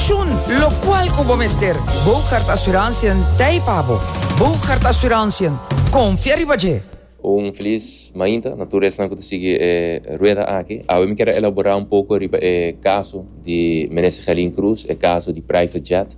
Shun locual cu bo mester. Bougaard Assurantiën t'ei pa bo. Bougaard Assurantiën, confia riba dje! Un feliz mainta na tur esnan cu ta sigui e rueda aki. Awe mi kier a elabora un poco riba e caso di Minister Gelin Cruz, e caso di private jet.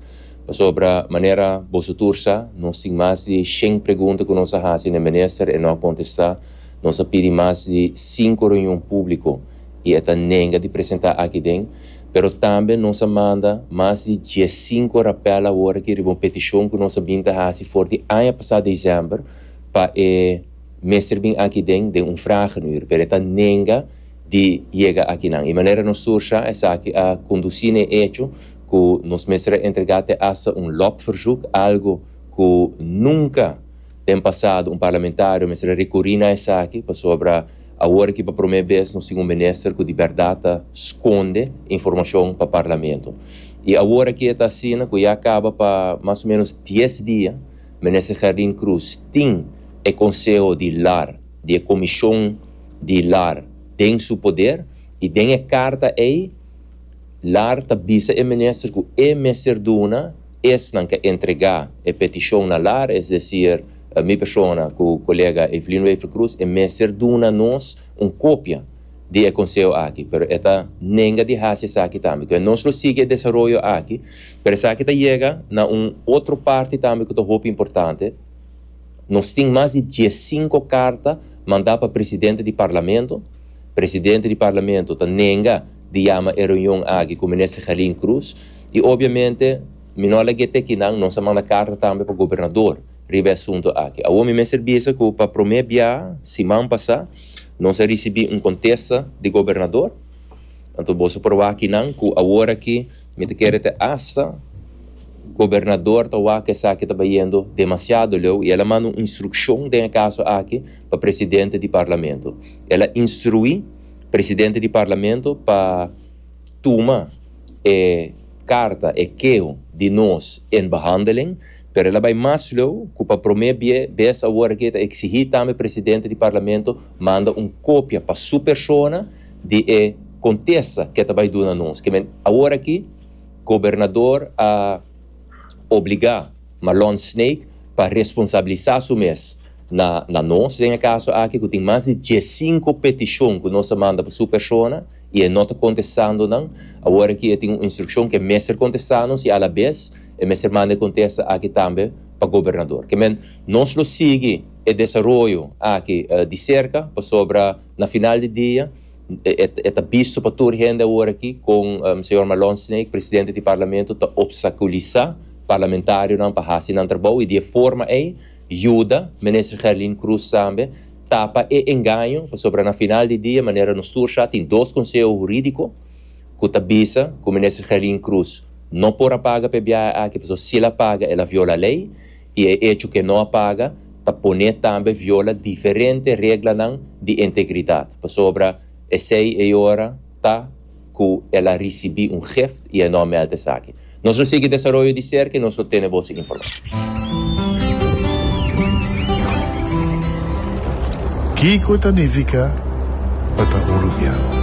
Pasobra manera boso tur sa, nos tin mas di shen pregunta cu nos a haci na e Minister, e no a contesta. Nos a pidi mas di cinco reunion publico y e ta nenga di presenta aki den. Pero tambe nos a manda mas di diescinco rapel awor aki riba un peticion cu nos a bin ta haci for di aña pasa december pa e Mester bin aki den den un vragenuur, pero e ta nenga di yega akinan. E manera nos sursha esaki a conduci na e hecho cu nos mester a entrega te hasta un lobverzoek, algo cu nunca den pasado un parlamentario mester a recuri na esaki pasobra, Awor aki pa promé bes nos tin un minister cu di berdad ta sconde informacion pa Parlamento. Y awor aki e ta asina cu ya caba pa mas o menos dies dia Minister Gerdin Cruz tin e Conseho di Lar di e Comision di Lar den su poder y den e carta ey Lar ta bisa e Minister cu e mester duna Esnan ke entrega e petishon na lar, es desir mi persona ku kolega Evelino Eiffel Cruz, e mester duna nos un kopia di e konseo aki, pero e ta nenga di hasi esaki tambe. Enton nos lo sigui e desaroyo aki, pero esaki ta yega na un otro parti tambe ku ta hopi importante, nos tin mas di diesinko karta manda pa presidente di parlamento, presidente di parlamento ta nenga. di yama e reunion aki ku Minister Gelin Cruz i obviamente mi no a lag'é te kinan, nos a manda karta tambe pa Gobernador riba e asunto aki. Awor mi mester bisa ku pa promé bia siman pasá nos a risibí un kontesta di Gobernador, anto boso por wak kinan ku awor aki mi ta kere te asta Gobernador ta wak ku esaki ta bayendo demasiado leu i el a manda un instrukshon den e kaso aki pa Presidente di Parlamento, el a instruí. presidente di Parlamento pa tuma e karta, e keho di nos in behandeling, pero el a bai mas leu ku pa promé bes awor aki e ta eksigí tambe presidente di Parlamento manda un kopia pa su persona di e kontesta ke ta bai duna nos. Ke men awor aki gobernador a obligá. Marlon Snake pa responsabilisa su mes na na nos den e kaso aki ku tin mas di diesinku petishon ku nos a manda pa su persona i e no ta kontestando nan. Awor aki e tin un instrukshon ku e mester kontestá nos i alabes e mester manda e kontesta aki tambe pa gobernador. Ke men nos lo sigui e desaroyo aki di serka pasobra Na final di dia, e ta bisto pa tur hende awor aki kon señor Malone Snake, presidente di Parlamento, ta opstakulisá parlamentarionan pa hasi nan trabou i di e forma ei yuda Minister Gerlin Cruz tambe tapa e engaño pasobra na final di dia manera nos tur sa tin dos konseho hurídiko ku ta bisa ku Minister Gerlin Cruz no por a paga p'e biaha aki pasobra si el a paga el a viola lei I e echo ke no a paga ta poné tambe viola diferente reglanan di integridat, pasobra esei e ora ta ku el a risibí un gift i e no a meld esaki. Nos lo sigui desaroyo di serka i nos lo tene bo su informashon. Kiko ta nifiká pa ta uruguiano?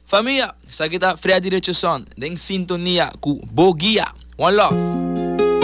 Famia, esaki ta Freddy Richardson den sintonia cu Bo Guia. One love.